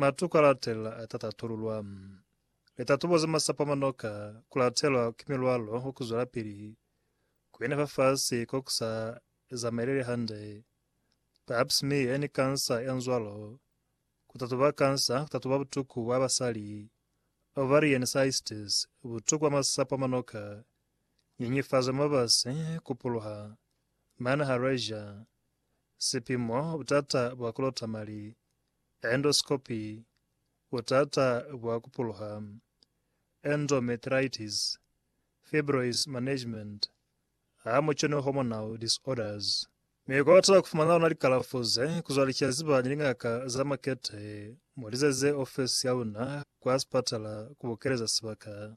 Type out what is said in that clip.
Matu ka latelela a ta tatululwa. Litatubo za masapo a manoka ku latelwa ki milwalo wa ku zwelapili ku ina fafasi ko ku sa zamaeleli hande, pap smear ni kansa ya nzwalo, ku tatuba kansa, ku tatuba butuku bwa basali, ovarian cystes, butuku bwa masapo a manoka, nyenyefazo ya mabasi, ku puluha, manha, rager, sipimo, butata bwa ku lota mali, Endoscopy, Butata bwa ku puluha, endometritis, fibroids management, ha mu kenwe hormonal disorders. Mi kwa bata ku fumana luna likalafo ze, ku zwa likiya ziba ni lingaka za makete, mu lizeze ofesi ya luna kwa sipatala ku bukeleza sibaka.